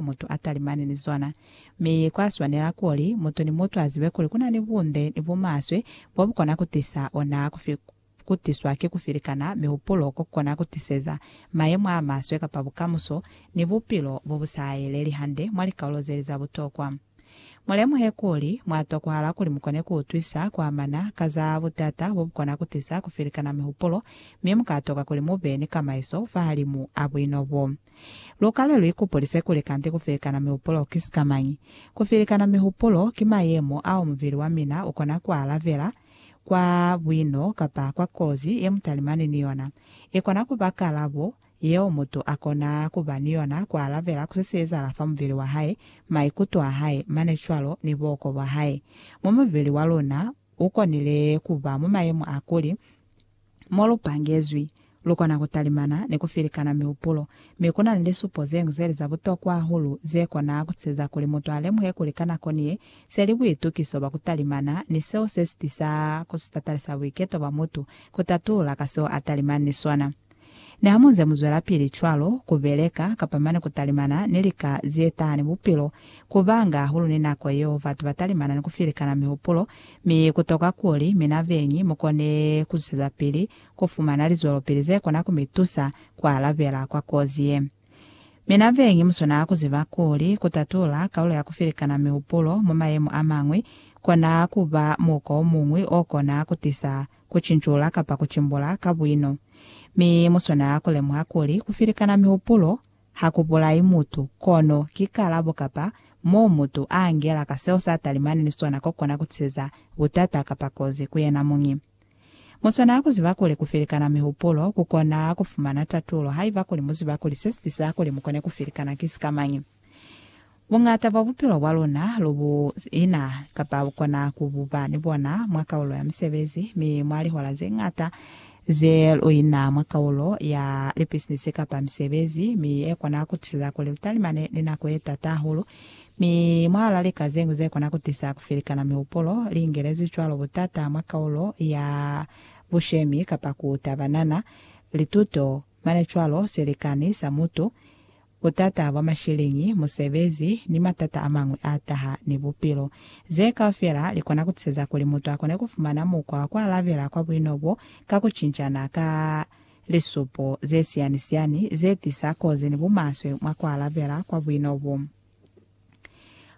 ku mutu a talimani ni zona. Mi kwa swanela kuli mutu ni mutu a zibe kuli ku na ni bunde ni bumaswe bo bu kona ku tisa ona ku tiswa ki ku filikana mihupulo ko ku kona ku tiseza mayemo a maswe kapa bukamuso ni bupilo bo bu sa yeleli hande mwa likaulo ze li za butokwa. Mulemuhe kuli, mwa tokwahala kuli mukone kuutwisa kuamana ka za butata bobukona kutisa kufilikana mihupulo, mi mukatoka kuli mube ni kamaiso fahalimu a buino bo. Lukale luikupulise kuli kanti kufilikana mihupulo ki sikamañi. Kufilikana mihupulo ki mayemo ao mubili wamina ukona kualabela kwa buino kapa kwa kozi yemutalimani ni yona. Ikona kuba kalabo yeo mutu a kona ku ba ni yona ku alabela ku se si ezahala fa mubili wa hae, maikuto a hae, mane cwalo ni buhoko bwa hae. Mo mubili wa luna u konile ku ba mwa mayemo a kuli, mo lu pangezwi, lu kona ku talimana ni ku filikana mihupulo. Mi ku na ni lisupo ze ñwi ze li za butokwa hahulu ze kona ku tisa kuli mutu a lemuhe kuli ka nako ni ye se li buitukiso bwa ku talimana ni seo se si tisa ku sitatalisa buiketo bwa mutu ku tatulula ka seo a talimani ni sona. Niha mu nze mu zwelapili cwalo, ku beleka, kapa mane ku talimana, ni lika ze tahani bupilo, ku banga hahulu ni nako yeo batu ba talimana ni ku filikana mihupulo, mi ku tokwa kuli mina beñi mu kone ku zwezapili ku fumana lizwelopili ze kona ku mi tusa ku alabela kwa kozi ye. Mina beñi mu swanela ku ziba kuli ku tatula kaulo ya ku filikana mihupulo mwa mayemo a mañwi kona ku ba muko o muñwi o kona ku tisa ku cinjula kapa ku cimbula ka buino. Mi mu swanela ku lemuha kuli ku filikana mihupulo ha ku bulai mutu, kono ki kalabo kapa moo mutu a angela ka seo sa talimani ni sona ko kona ku tiseza butata kapa kozi ku yena muñi. Mu swanela ku ziba kuli ku filikana mihupulo ku kona ku fumana tatulo haiba kuli mu ziba kuli se si tiseza kuli mu kone ku filikana ki sikamañi. Buñata bwa bupilo bwa luna lu bu ina, kapa bu kona ku bu ba ni bona, mwa kaulo ya misebezi, mi mwa lihola ze ñata ze lu ina mwa kaulo ya lipisinisi kapa misebezi, mi ye kona ku tisa kuli lu talimane ni nako ye t'ata hahulu. Mi mwahal'a lika ze ñwi ze kona ku tisa ku felikana mihupulo, li ingelezwi cwalo but'ata mwa kaulo ya bushemi kapa ku tabanana, lituto, mane cwalo, silikani sa mutu, butata bwa masheleñi, musebezi, ni matata a mañwi a taha ni bupilo. Ze kaufela li kona ku tiseza kuli mutu a kone ku fumana mukwa wa ku alabela kwa buino bo ka ku cincana ka lisupo ze siyani-siyani ze tisa kozi ni bumaswe mwa ku alabela kwa buino bo.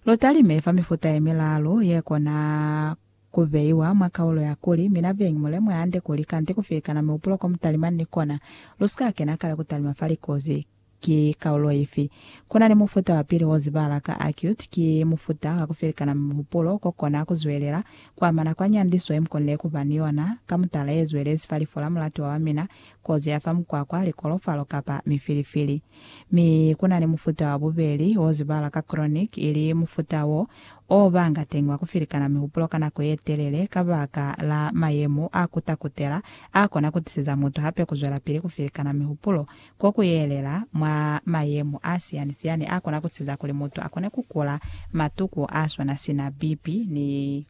Lu talime fa mifuta ye milaalu ye kona ku beiwa mwa kaulo ya kuli, Mina Beñi, mu lemuhe hande kuli kanti ku filikana mihupulo ko mu talimani ni kona, lu si ka kena kale ku talima fa likozi. Ki kaulo ifi? Kuna ni mufuta wa pili o zibala ka acute, ki mufuta wa ku felikana mihupulo ko kona ku zwelela ku amana kwa nyandiso ye mu konile ku ba ni yona, ka mutala ye zwelezi fa lifo la mulatiwa wa mina, kozi ya fa mukwakwa, likolofalo, kapa mifilifili. Mi kuna ni mufuta wa bubeli o zibala ka chronic, ili mufuta wo o banga teñi wa ku felikana mihupulo ka nako ye telele kabaka la mayemo a ku takutela a kona ku tiseza mutu hape ku zwelapili ku felikana mihupulo Ko ku yelela mwa mayemo a siyani-siyani a kona ku siza kuli mutu a kone ku kula matuku a swana sina BP ni,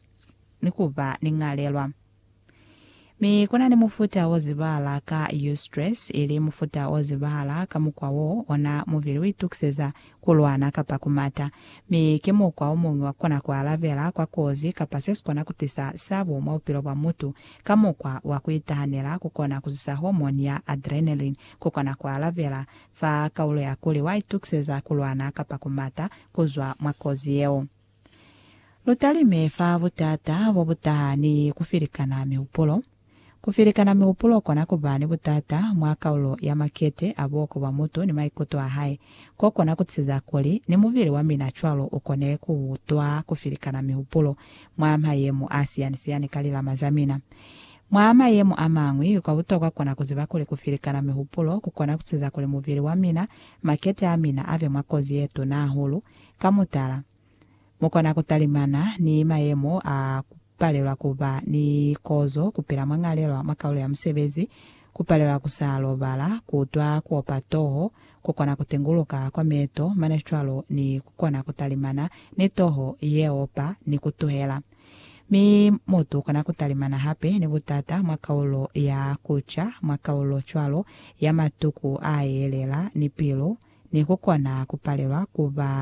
ni ku ba ni ñalelwa. Mi ku na ni mufuta wo zibahala ka eustress, ili mufuta o zibahala ka mukwa w'o ona mubili u itukiseza ku lwana, kapa ku mata. Mi ki mukwa o muñwi wa kukona ku alabela kwa kozi kapa se si kona ku tisa sabo mwa bupilo bwa mutu. Ka mukwa wa ku itahanela, ku kona ku zusa hormone ya adrenaline, ku kona ku alabela fa kaulo ya kuli wa itukiseza ku lwana kapa ku mata ku zwa mwa kozi yeo. Lu talime fa butata bo bu taha ni ku filikana mihupulo. Ku filikana mihupulo kona ku ba ni butata mwa kaulo ya makete a buhoko bwa mutu ni maikuto a hae, ko kona ku tiza kuli ni mubili wa mina cwalo u kone ku utwa ku filikana mihupulo mwa mayemo a siyani-siyani ka lilama za mina. Mwa mayemo a mañwi, kwa butokwa kona ku ziba kuli ku filikana mihupulo ku kona ku tiza kuli mubili wa mina, makete a mina, a be mwa kozi ye tuna hahulu Ka mutala, mu kona ku talimana ni mayemo a ku palelwa ku ba ni kozo, ku pila mwa ñalelwa mwa kaulo ya musebezi, ku palelwa ku sa lobala, ku utwa ku opa toho, ku kona ku tinguluka kwa meeto mane cwalo ni ku kona ku talimana ni toho ye opa ni ku tuhela. Mi mutu u kona ku talimana hape ni butata mwa kaulo ya ku ca, mwa kaulo cwalo ya matuku a yelela ni pilu, ni ku kona ku palelwa ku ba